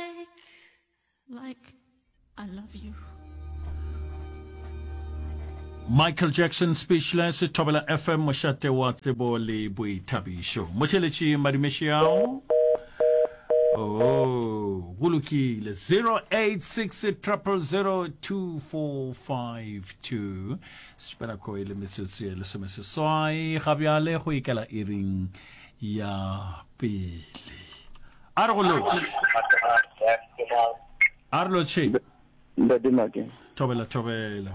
Like, like, I love you. Michael Jackson Speechless Thobela FM mošate wa tsebo le boithabišo mošeletši madumešiao oh go lokile 0860002452 sepanako e le metsotso e lesome seswai ga bjale go ikela iring ya pele A re go lotšhe. A re lotšhe. Ntate Make. Thobela, thobela.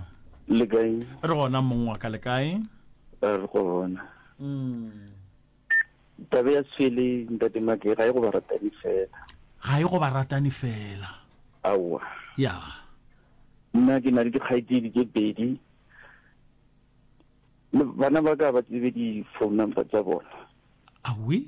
Le kae? Re gona mong wa ka le kae? Re gona. Mm. Tabe ya sele ntate Make ga e go ba ratani fela. Ga e go ba ratani fela. Aowa. Ya. Nna ke na le dikgaitsedi tse pedi. Bana ba ka ba tsebe di phone number tsa bona. Awi.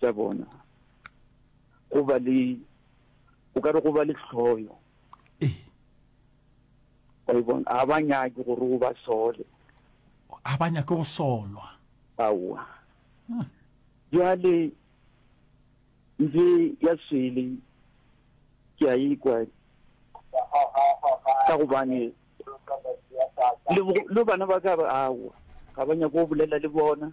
tša bona, go ba le, o ka re go ba le hloyo. Ee. Wa e bona, ga ba nyake gore o ba sole. Ga ba nyake go solwa. Aowa. Hmm. Bjale, nje ya swele, ke a ikwa, ka gobane, le, le bana ba ka, aowa, ga ba nyake go bolela le bona.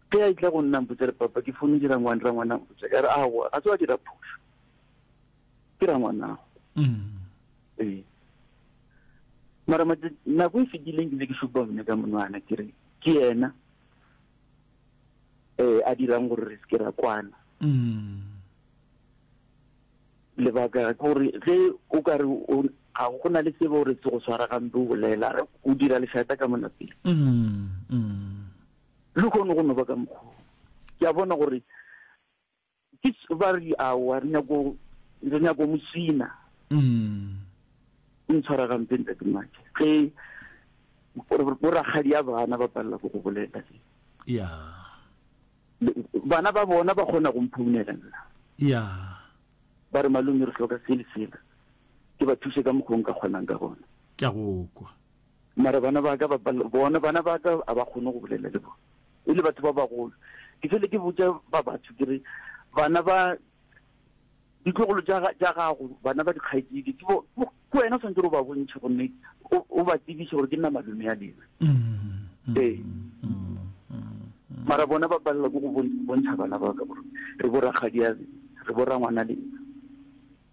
Ge a etla go nna a mpotša re, Papa, ke founetše rangwane, rangwane a mpotša ya re, Aowa, ga se wa dira phošo, ke rangwanago. Ee. Mara nako e fetileng ke be ke šupa mne ka monwana ke re ke yena um a dirang gore re se ke ra kwana. Lebaka ke gore ge o ka re ga go na le sebe gore se go tshwara gampe o bolela o dira lešata ka monapele. Lehono go no ba ka mokgwa wo, ke a bona gore ke ba re aowa, re nyako re nyako mosina. Ntshwara gampe ntate Mmake, ge bo rakgadi ya bana ba palela go go bolela le ya bana ba bona ba kgona go mphounela nna ya ba re malome re hloka se le sela, ke ba thuse ka mokgwa o nka kgonang ka gona. Ke a go kwa. Mara bana ba ka ba, bona bana ba ka a ba kgone go bolela le bona, e le batho ba bagolo. Ke fele ke botša ba batho ke re, bana ba ditlogolo tša tša gago, bana ba dikgaetšedi ke bo, ke wena o swanetše o ba bontšhe gomme o, o ba tsebiše gore ke nna malome a lena. Ee. Mara bona ba palela ke go bontšha bana ba ka gore re bo rakgadiabe, re bo rangwana lena.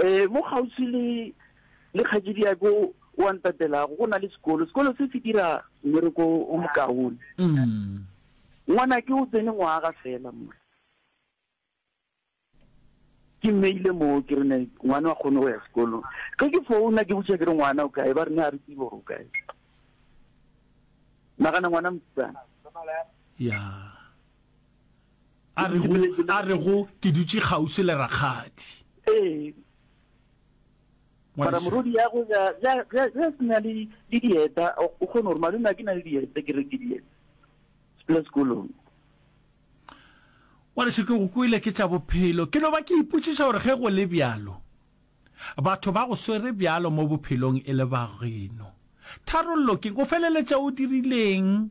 Ee, mo kgauswi le, le kgaetšediako o a ntatelago, go na le sekolo. Sekolo se se dira mmereko o mokaone. Ngwanake o tsene ngwaga fela mola. Ke mmeile moo, ke re ne ngwana a kgone go ya sekolong. Ge ke founa ke botšiša ke re ngwana o kae, ba re ne a re tsebe gore o kae. Nagana ngwana mosetsana. Ya. a re go a re go ke dutše kgauswi le rakgadi ee mara morodi ya go ya ya ya ya sina le le dieta o o kgone gore malome a ke na le dieta ke re ke dieta le sekolong wa lesho ke go kwele ke tša bophelo ke no ba ke ipotšiša gore ge go le bjalo batho ba go swere bjalo mo bophelong e le bageno tharollo ke o feleletša o dirileng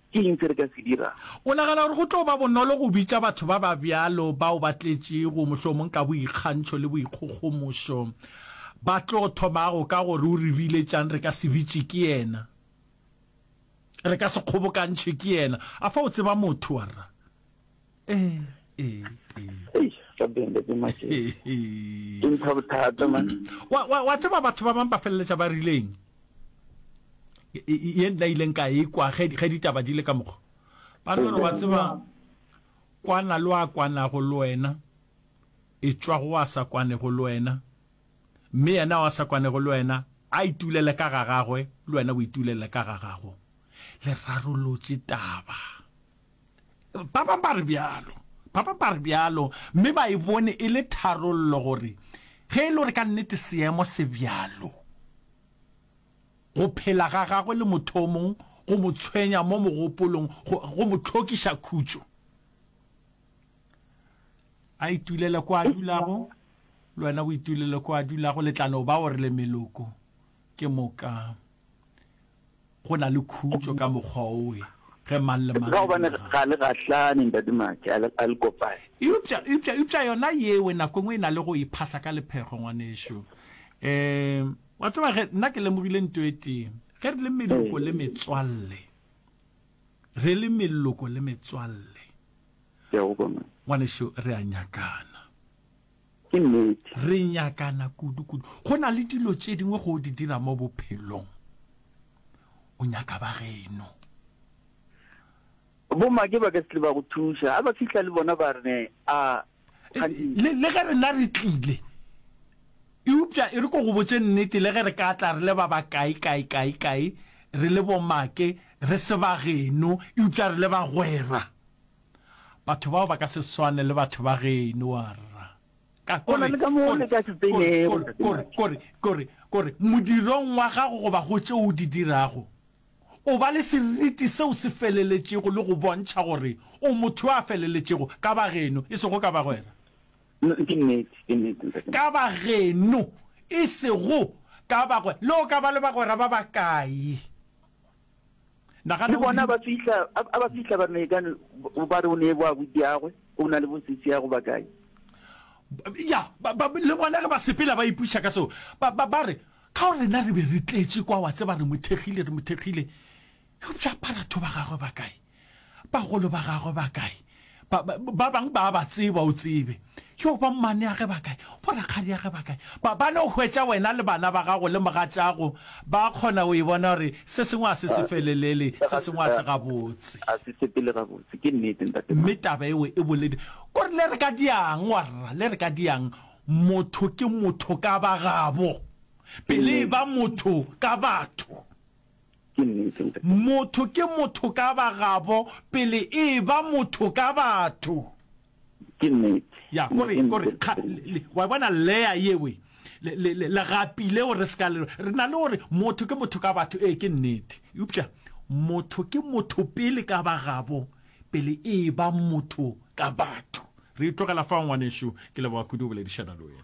Ke eng se re ka se dirago? O nagana gore go tlo ba bonolo go bitša batho ba ba bjalo, bao ba tletšego mohlomong ka boikgantšho le boikgogomošo? Ba tlo thomago ka go re, O re biletšang re ka se bitše ke yena? Re ka se kgobokantšhwe ke yena? Afa o tseba motho, warra? ee ee ee Hey, rabbi and the magic. Ee, ee. Ke mpha bothata man. wa wa- wa tseba batho ba bang ba feleletša ba rileng E- e- ye nna ileng ka e kwa ge ge ditaba di le ka mokgwa ba re gore wa tseba kwana le wa kwanago le wena e tšwa go wa sa kwanego le wena mme yena wa sa kwanego le wena a itulele ka ga gagwe le wena o itulele ka ga gago le rarolotše taba Ba bang ba re bjalo. Ba bang ba re bjalo, mme ba e bone e le tharollo gore ge e le gore ka nnete seemo se bjalo, go phela ga gagwe le motho o mong go mo tshwenya mo mogopolong, go, go mo tlhokiša khutšo. A itulele ko a dulago, le wena o itulele ko a dulago, le tla no ba gore le meloko. Ke moka go na le khutšo ka mokgwa owe ge mang le mang. Ka gobane ga le gahlane ntate Matšhe, a le kopane. Eupša, eupša, eupša yona yewe nako engwe e na le go iphahla ka lephego ngwanešu. Um, wa tseba ge nna ke lemogile nto e tee, ge re le meloko le metswalle, re le meloko le metswalle, ngwanešu re a nyakana. Ke nnete. Re nyakana kudu-kudu. Go na le dilo tše dingwe go di dira mo bophelong, o nyaka ba geno. Bomake ba ka se tle ba go thuša. A ba fihla le bona ba re, A, kganthe. Le, le ge rena re tlile. Eupša e re ko go botše nnete, le ge re ka tla re le ba bakae, kae, kae, kae, re le bomake, re se ba geno, eupša re le bagwera. Batho bao ba ka se swane le batho ba geno, warra. Ka, Go na le ka mo o le ka se tsenego, Ntate kore, Mike. kore, kore, kore, modirong wa gago goba go tšeo o di dirago, o ba le seriti seo se feleletšego le go bontšha gore o motho yo a feleletšego, ka bageno, e sego ka bagwera. N, ke nnete, ke nnete, Ntate Mike. Ka bageno, e sego ka bagwera. Le o ka ba le bagwera ba bakae, Nagana, o bona, ba fihla, a, a ba fihla ba mekane, ba re o ne bo abuti yagwe, o na le bosisi ya go ba kae. Ya, ba, ba, le bona ge ba sepela ba ipuša ka seo, ba, ba, ba re, ka gore rena re be re tletše kwa, wa tseba, re mo thekgile, re mo thekgile, eupša baratho ba gagwe ba kae? Bagolo ba gagwe ba kae? Ba, ba, ba bang ba a ba tseba, o tsebe. Yoo, ba mmaneage ba kae? Bo rakgadiage ba kae? Ba, ba no hwetša wena le bana ba gago le mogatšago ba kgona go e bona gore se sengwe ga se se felelele, se sengwe ga se gabotse. Ga se sepele gabotse. Ke nnete, Ntate Maka. Mme taba eo e boledi gore le re ka diang, warra, le re ka diang, motho ke motho ka bagabo, pele e ba motho ka batho. Ke nnete, ntate. Motho ke motho ka bagabo pele e eba motho ka batho. Ke nnete. Ya, ko re, ko re, ga, le, le, wa bona layer yewe, le, le, le, legapi leo re se ka le, re na le go re, motho ke motho ka batho, ee, ke nnete. Eupša motho ke motho pele ka bagabo pele e eba motho ka batho. Re e tlogela fao, ngwanešu. Ke leboga kudu go boledišana le wena.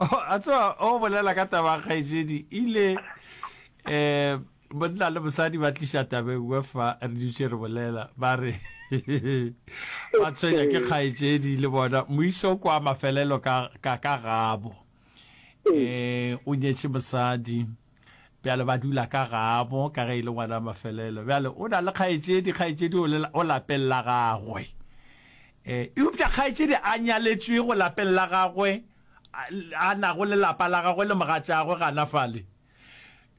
a tswa o bolela ka taba kgaetšedi ile um monna le mosadi ba tliša tabeng we fa re dutše re bolela ba re ba tshwenya ke kgaetšedi le bona moiso kwa mafelelo ka gabo um o nyetše mosadi bjale ba dula ka gabo ka ge e le ngwana mafelelo bjale o na le kgaetšedi kgaetšedi o lapeng la gagwe um eupša kgaetšedi a nyaletšwe go lapeng la gagwe a nago le lapa la gagwe le mogatšagwe gana fale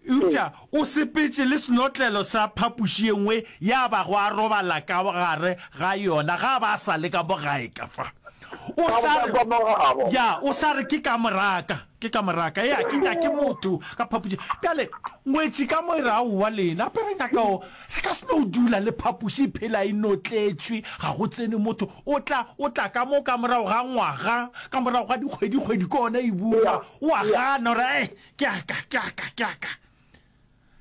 eupša o sepetše le senotlelo sa phapoši ye nngwe ya bago a robala ka gare ga yona ga ba sa le ka mogaeka fa o sa re ke ka moraka Ke ka moraka, ea ke nyake motho ka phapošing. Bjale, ngwetši ka mo e re, Aowa, lena pe re nyaka o, re ka se no dula le phapoši e phela e notletšwe, ga go tsene motho. O tla, o tla ka mo ka morago ga ngwaga, ka morago ga dikgwedi-kgwedi, ke gona e bua. O a gana, o re, Ee, ke a ka, ke a ka, ke a ka.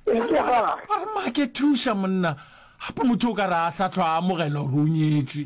Eupša ga. Ba re, Make, thuša monna. Gape motho o ka re a sa hlwa a amogela gore o nyetšwe.